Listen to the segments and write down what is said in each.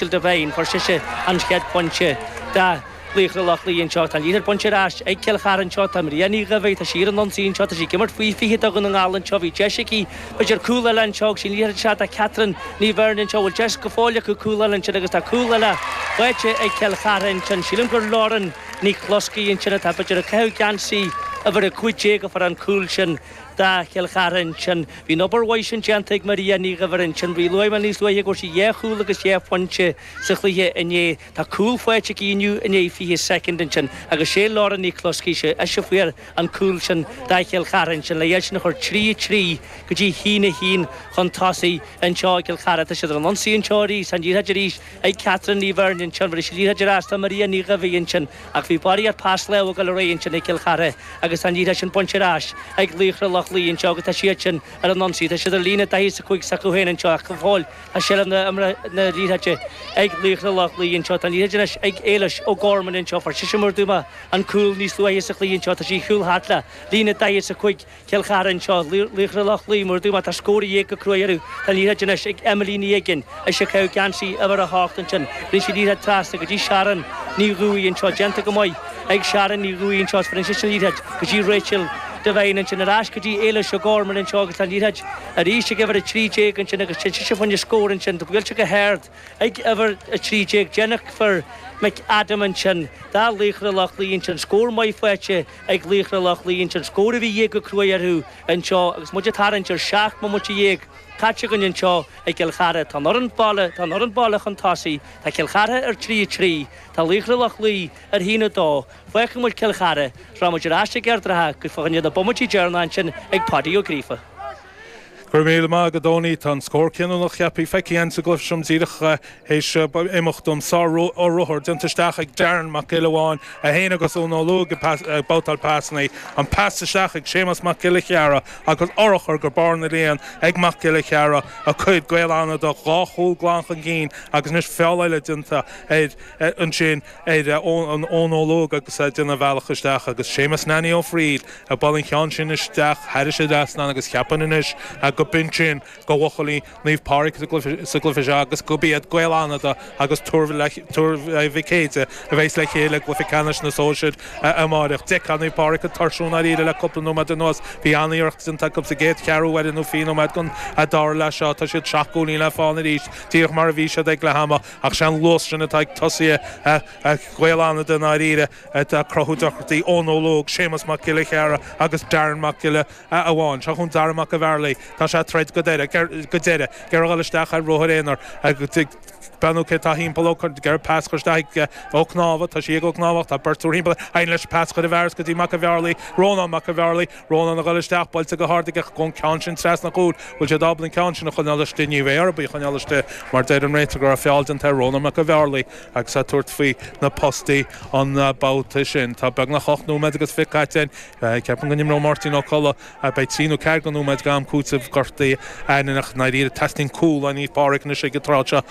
Jill Devine, fuair sise an chéad phointe do Laochra Loch Lao anseo. Tá an liathróid bainte ar ais ag Cill Chartha anseo. Tá Maria Ní Dhuibhir, tá sí ar an ionsaí anseo, tá sí ag imirt faoi 20 do Dhún na nGall anseo. Bhí deis aici idir cúl eile anseo agus sin liathróid isteach do Catherine Ní Bheirn anseo. Bhfuil deis go fóill acu cúl eile ansin agus tá cúl eile faighte ag Cill Chartha ansin. Sílim gur Lauren Ní Chloiscigh ansin atá b'fhéidir ag caitheamh geansaí uimhir 15 a fuair an cúl sin. do Chill Chartha ansin. Bhí an obair mhaith sin déanta ag Maria Ní Dhuibhir ansin. Bhí luaigh mé níos luaithe go bhfuair sí dhá chúl agus dhá phointe sa chluiche inné. Tá cúl faighte aici inniu i ndiaidh 20 soicind ansin agus sé Lauren Ní Chloiscigh ansin a fuair an cúl sin do Chill Chartha ansin le iad sin a chur trí a trí go dtí a haon a haon chun tosaigh anseo i gCill Chartha. Tá siad ar an ionsaí anseo arís. Tá an liathróid arís ag Catherine Ní Bheirn ansin. Bheireann sí liathróid ar ais do Maria Ní Dhuibhir ansin. Ach bhí barraíocht pas láimhe go léir ansin ag Cill Chartha agus tá an liathróid ansin bainte ar ais ag laochra Loch Lao anseo agus tá siad sin ar an ionsaí. Tá siad ar líne 40 is 5 s'acu féin anseo ach go fóill tá seilbh na himeartha na liathróide ag laochra Loch Lao anseo. Tá an liathróid anois ag Éilis O'Gorman anseo. Fuair sise mar a dúirt mé an cúl níos luaithe sa chluiche anseo. Tá sí ag gabháil thart le líne 40 is 5. Cill Chartha anseo, Laochra Loch Lao, mar a dúirt mé, tá scór de dhíth go cruaidh orthu. Tá liathróid anois ag Emily Ní Uiginn, ise ag caitheamh geansaí uimhir a hocht ansin. Bheireann sí liathróid trasna go dtí Sharon Ní Dhufaigh anseo. Déanta go maith ag Sharon Ní Dhufaigh anseo is bheireann sise liathróid go dtí Rachel Devine ansin. Ar ais go dtí Éilis O'Gorman anseo agus tá liathróid arís ag uimhir a trí déag ansin agus téann sise fá choinne scór ansin. Tá buailte go hard ag uimhir a trí déag. Jennifer McAdam ansin, do Laochra Loch Lao ansin. Scór maith faighte. ag Laochra Loch Lao ansin scór a bhí de dhíth go cruaidh orthu anseo agus muid ag tarraingt ar seacht mbomaite dhéag caite againn anseo i gCill Chartha. Tá an fhoireann baile Tá an fhoireann baile chun tosaigh. Tá Cill Chartha ar trí a trí. Tá Laochra Loch Lao ar haon a dó. Fágfaidh muid Cill Chartha. Is rachaidh muid ar ais ag Ard an Rátha agus fá choinne na mbomaití deireanacha ansin ag Paudie Ó Gríofa. Go raibh míle maith agat Eoiní. Tá an scór cinniúnach cheapfaí feicthe agam sa gcluiche seo díreach théis imeacht an sár-ruathar déanta isteach ag Darren Mac Giolla Bháin, é féin agus Eoin Ó Laoghóg ag babhtáil pasanna, an pas isteach ag Séamas Mac Giolla Chearra agus urchar go barr na líon ag Mac Giolla Chearra a chuir Gaeil Fhánada, dhá chúl glan chun cinn agus anois feall eile déanta air ansin. ar Eoin Ó Laoghóg agus é ag déanamh a bhealach isteach agus Séamus Nanny Ó Frighil ag bualadh an cheann sin isteach thairis an trasnán agus cheapfainn anois go b'in sin go bhuachaillí Naomh Pádraig sa gcluife seo agus gurb iad Gaeil Fhánada agus Tuar Mhic Éadaigh a bheas le chéile i gcluife ceannais na sóisear amáireach. D'fheicfeá Naomh Pádraig ag tuirsiú ndáiríre le cúpla nóiméad anuas. Bhí an-iarracht déanta acu sa gcéad cheathrú uaire nó fiche nóiméad den dara leath seo tá siad seacht gcúilín le fána arís díreach mar a bhí siad ag leath ama. Ach sé an luas sin atá ag tosaithe Ghaeil Fhánada i ndáiríre atá ag cruthú deacrachtaí, Eoin Ó Laoghóg, Séamas Mac Giolla Chearra agus Darren Mac Giolla Bháin. Seo chugainn Dara Mac a' Bhearlaigh, tá sé ag troid go deireadh, ag iarraidh a dhul isteach ar ruathar aonair, ag breathnú cé atá thimpeall, ag iarraidh pas a chur isteach ag Ó Cnámha, tá sí ag Ó Cnámhach, tá beirt triúr thimpeall air, éiríonn leis pas a chur i bhfearas go dtí Mac a' Bhearlaigh, Rónán Mac a' Bhearlaigh. Rónán a dhul isteach, buailte go hard aige an ceann sin trasna an chúil, bhfuil siad ábalta an ceann sin a choinneáil istigh, ní bheidh orthub í a choinneáil istigh mar deir an réiteoir go raibh feall déanta ar Rónán Mac an Bhearlaigh agus é ag tabhairt faoi na postaí an babhta sin. Tá beagnach ocht nóiméad agus fiche caite. Ceapaim go n-imreoidh Máirtín Ó Colla b'fhéidir trí nó ceathair go nóiméad go am cúiteamh gortaithe ainneoin ach ndáiríre teastaíonn cúl ó Naomh Pádraig anois ag an tráth seo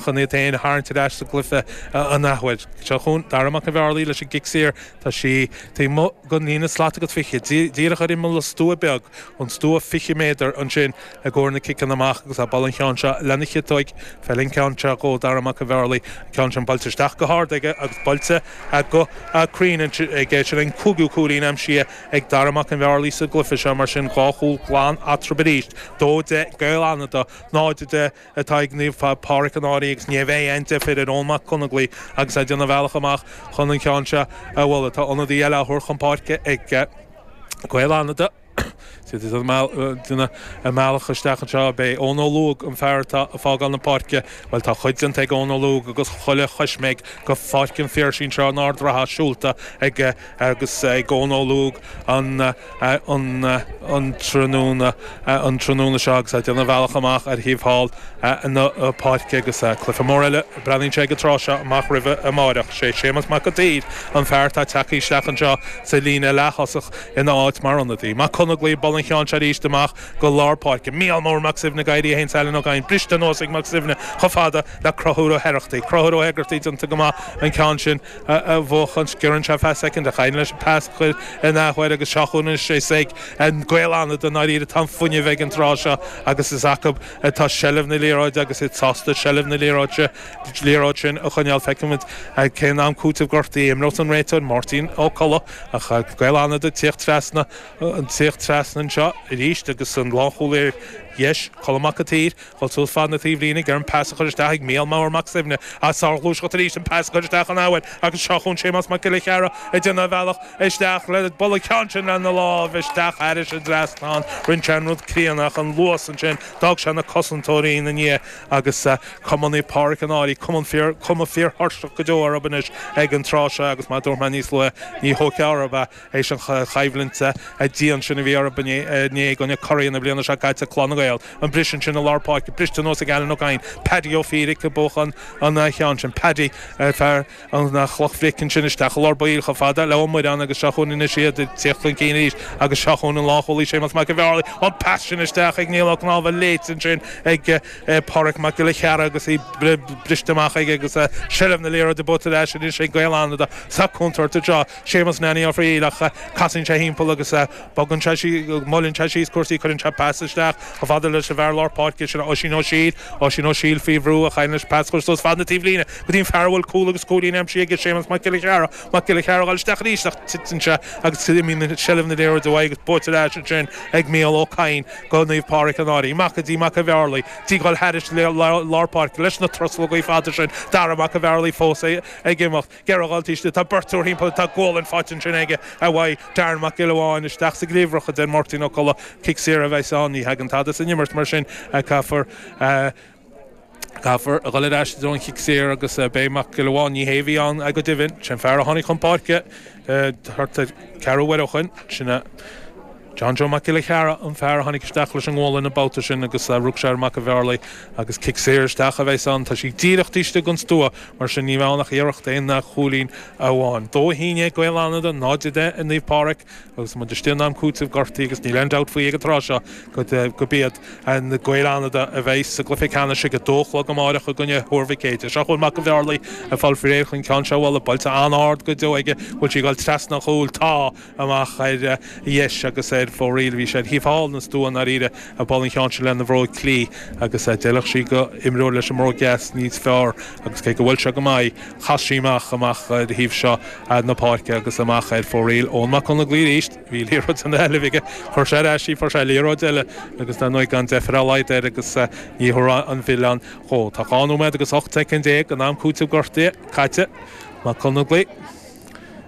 chun iad féin a tharraingt ar ais sa gcluiche an athuair. Seo chugainn Darragh Mac an Bhearlaigh leis an gcic saor. Tá sí taobh amuigh. den líne slat agus 20, díreach ar imeall an stua beag, an stua 20 méadar ansin i gcomhair na ciceanna amach agus ag bualadh an cheann seo lena chiotóig, feileann an ceann seo dhó Dara Mac a' Bhearlaigh, an ceann sin buailte isteach go hard aige agus buailte go cruinn aige, sin an cúigiú cúilín aimsithe ag Dara Mac an Bhearlaigh sa gcluiche seo, mar sin dhá chúl glan eatrab arís, 2 10 Gaeil Fhánada, 0 10. atá ag Naomh Pádraig an Fhairche agus ní bheidh aon deifir ar Eoin Mac Conaglaigh agus é ag déanamh a bhealach amach chun an cheann seo a bhualadh. Tá ionadaí eile á thabhairt chun páirce ag Gaeil Fhánada. É ag déanamh a bhealach isteach anseo, b'é Eoin Ó Laoghóg an fear atá ag fágáil na páirce. Bhuel tá a chuid déanta ag Eoin Ó Laoghóg agus chuile choisméig go Pháirc an Phiarsaigh anseo in Ard an Rátha siúlta ag agus ag Eoin Ó Laoghóg an tráthnóna, an tráthnóna seo agus é ag déanamh a bhealach amach ar thaobh thall na páirce agus cluiche mór eile a breathnaíonn sé ag an tráth seo amach roimhe amáireach. Sé Séamus Mac an tSaoir an fear atá ag teacht isteach anseo sa líne leath-thosach ina áit mar ionadaí. Mac Conaglaigh, bualadh an cheann seo arís amach go lár páirce. Mícheál Mór Mac Suibhne ag éirí é fhéin is Alan Ó Cadhain briste anuas ag Mac Suibhne chomh fada le Conchúr Ó hOireachtaigh. Conchúr Ó hOireachtaigh déanta go maith an ceann sin. a bhuachaint. Sciorrann sé feadh soicind ach éiríonn leis an pas a chur an athuair agus seo chugainn anois is ag Gaeil Fhánada ndáiríre atá an fuinneamh ag an tráth seo agus is acu atá seilbh na liathróide agus iad sásta seilbh na liathróide liathróid sin a choinneáil. Feicimid ag cén am cúiteamh gortaithe a imreos an réiteoir Máirtín Ó Colla ach Gaeil Fhánada ag tíocht trasna an tíocht trasna anseo arís agus an lánchúlaí ar dheis Colm Mac a tSaoir. Ag dul suas fad na taobhlíne ag iarraidh an pas a chur isteach ag Mícheál Mór Mac Suibhne ach sárghluaiseacht arís an pas a chur isteach an athuair agus seo chugainn Séamas Mac Giolla Chearra ag déanamh a bhealach isteach leis ag bualadh an ceann sin lena lámh isteach thairis an trasnán rinne sé an rud críonna ach an luas ansin d'fhág sé na cosantóirí ina ndiaidh agus cuma ar Naomh Pádraig an Fhairche, cuma, cuma fíorthuirseach go deo orthub anois ag an tráth seo agus mar a dúirt mé níos luaithe ní tógtha orthub é éis an choimhlinte dian sin a bhí orthu inné i gcoinne curaidh na bliana seo caite, Clann na Gael. An briseadh ansin i lár páirce? Briste anuas ag Alan Ó Cadhain, Paddy Ó Fiaidh ag buachan an cheann sin. Paddy, fear an chloch bhric ansin isteach i lár baill chomh fada le Ó Muireáin agus seo chugainn anois iad ag tíocht chun cinn arís agus seo chugainn an lánchúlaí Séamus Mac an Bhearlaigh. An pas sin isteach ag Niall Ó Cnámha léite ansin ag Pádraig Mac Giolla Chearra agus í briste amach aige agus seilbh na liathróide buaite aige anois ag Gaeil Fhánada sa chontúirt anseo. Séamus Nanny Ó Frighil ach casann sé thimpeall agus bogann sé síos, moillíonn sé síos cúrsaí, cuireann sé pas isteach chomh fada leis an bhfear lár páirce sin, Oisín Ó Siadhail, Oisín Ó Siadhail faoi bhrú ach éiríonn leis pas a chur suas fad na taobhlíne go dtí an fear a bhfuil cúl agus cúilín aimsithe aige, Séamus Mac Giolla Chearra, Mac Giolla Chearra ag goil isteach arís ach titeann sé agus imíonn seilbh na liathróide uaidh agus buaite ar ais ansin ag Mícheál Ó Cadhain do Naomh Pádraig an Fhairche, amach go dtí Mac a' Bhearlaigh, ag goil thairis lár páirce leis na truslógaí fada sin, Dara Mac a' Bhearlaigh fós ag imeacht. Géarghálta Uisce. Tá beirt triúr thimpeall air, tá gualainn faighte ansin aige, uaidh Darren Mac Giolla Bháin. Isteach sa gcliabhrach, a deir Máirtín Ó Colla. Cic saor a bheas ann. Ní thagann tada san imirt mar sin. Caithfear, caithfear a dhul ar ais i dtreo an chic saor agus beidh Mac Giolla Bháin. Ní hé a bhí ann go deimhin. Sin fear a tháinig chun páirce thart ar cheathrú uaire ó shin. Sin a. John Joe Mac Giolla Chearra an fear a tháinig isteach leis an ngualainn an babhta sin agus rug sé ar Mhac a' Bhearlaigh agus cic saor isteach a bheas ann. Tá sí díreach taobh istigh den stua, mar sin níl ann ach iarracht aon chúilín amháin. Dó a haon déag ag Gaeil Fhánada, 0-10 ag Naomh Pádraic agus muid istigh in am cúiteamh gortaithe agus níl aon dabht faoi ag an tráth seo gurb iad Gaeil Fhánada a bheidh sa gcluiche ceannais ag a dó a chlog amáireach i gcoinne Thuar Mhic Éide. Seo chugainn Mac a' Bhearlaigh ag fáil faoi réir chun ceann seo a bhualadh. Buailte an-ard go deo aige, bhfuil sí ag goil trasna an chúil. Tá. amach ar dheis agus ar fóraoil. Bhí sé ar thaobh thall na stua i ndáiríre, ag bualadh an cheann sin lena bhróig chlí, agus d'fheilfeadh sí do imreoir leis an mbróg dheas níos fearr agus cé gur bhuail sé go maith í, chas sí amach, amach ar thaobh seo na páirce agus amach ar fóraoil. Eoin Mac Conlaigh Bhuí arís. Bhí liathróid ina sheilbh aige, chuir sé ar ais í, fuair sé liathróid eile agus dar ndóigh gan deifir ar a laghad air agus ní thabharfá aon mhilleán dhó. Tá dhá nóiméad agus 18 soicind in am cúitimh gortaithe caite. Mac Conlaigh.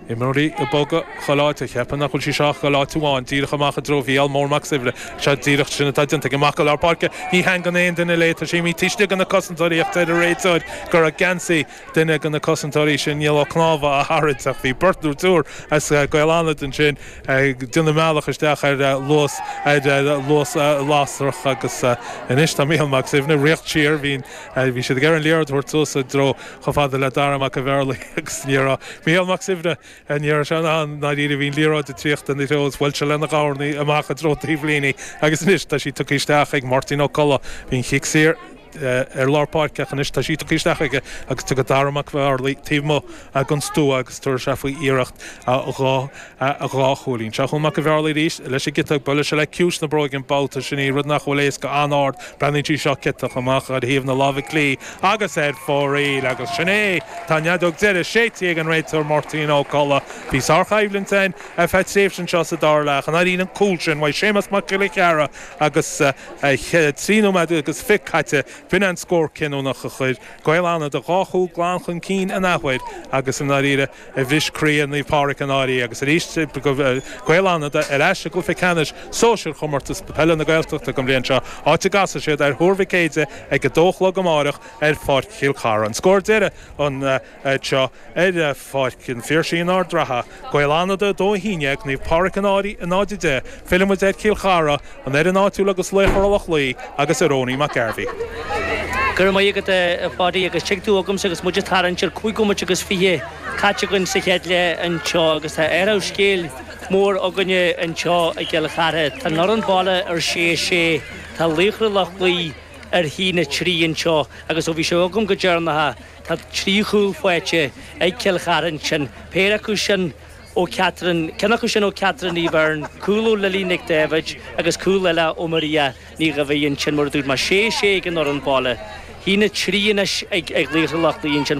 Imreoirí ag bogadh go leataobh, cheapfainn nach bhfuil sí seo ach go leataobh amháin, díreach amach i dtreo Mhícheál Mór Mac Suibhne. Sea, díreach sin atá déanta aige, amach go lár páirce. Ní theagmhaíonn aon duine léi, tá sí taobh istigh de na cosantóirí ach deir an réiteoir go raibh geansaí duine de na cosantóirí sin Niall Ó Cnámha á tharraingt ach bhí beirt nó triúr as Gaeil Fhánada ansin ag déanamh a mbealach isteach ar luas lasrach agus anois tá Mícheál Mac Suibhne, ag rith siar, bhí siad ag iarraidh an liathróid a thabhairt suas i dtreo chomh fada le Dara Mac an Bhearlaí agus ní raibh Mícheál Mac Suibhne a ndeoir as an áth ná riamh. Bhí an liathróid ag tíocht ina threo is bhuail sé lena dhoirne amach i dtreo taobhlíne agus anois tá sí tugtha isteach ag Máirtín Ó Colla. Bhí an chic saor ar lár páirce ach anois tá sí tugtha isteach aige agus tugtha do Dara Mac an Bhearlaí taobh amuigh den stua agus tabharfaidh sé faoi iarracht a a dhá chúilín. Seo chugam Mac an Bhearlaí arís leis an gciotach. Buaileann sé le ciumhais na bróige an babhta sin í, rud nach bhfuil éasca an-ard. Breathnaíonn sí seo ciotach amach ar thaobh na láimhe clí agus ar fóraoil agus sin é! Tá an fheadóg deiridh séidte ag an réiteoir Máirtín Ó Colla. Bhí sárchoimhlint ann ar feadh tréimhse anseo sa dara leath ach i ndáiríre an cúl sin uaidh Séamus Mac Giolla Chearra agus trí nóiméad agus fiche caite? B'in an scór cinniúnach a chuir Gaeil Fhánada dhá chúl glan chun cinn in athuair agus i ndáiríre. a bhris croí Naomh Pádraig An Fhairche agus arís Gaeil Fhánada ar ais i gcluiche ceannais sóisir Chomórtas Peile na Gaeltachta an bhliain seo, áit a gcasfaidh siad ar Thuar Mhic Éadaigh ag 2 a chlog amáireach ar Pháirc Chill Cartha. An scór deiridh anseo ar Pháirc an Phiarsaigh in Ard Ratha, Gaeil Fhánada 2, 11, Naomh Pádraig An Fhairche 0, 10. Fillfidh muid ar Chill Chartha an fhoireann áitiúil agus Laochra Loch Lao agus ar Eoiní Mac Gairbheith. Go raibh maith agat, a Pháidí, agus tig tú chugamsa agus muid ag tarraingt ar chúig bhomaite agus fiche caite againn sa chéad leath anseo agus tá athrú scéil mór againne anseo i gCill Chartha. Tá an fhoireann baile ar sé a sé, tá Laochra Loch Lao ar a haon a trí anseo agus ó bhí sibh agam go deireanach tá trí chúl faighte ag Cill Chartha ansin, péire acu sin, ó Catherine, ceann acu sin ó Catherine Ní Bheirn, cúl ó Lily Nic Daibhid agus cúl eile ó Maria Ní Dhaimhín, sin mar a dúirt mé, sé sé ag an fhoireann baile. A haon a trí anois ag Laochra Loch Lao ansin.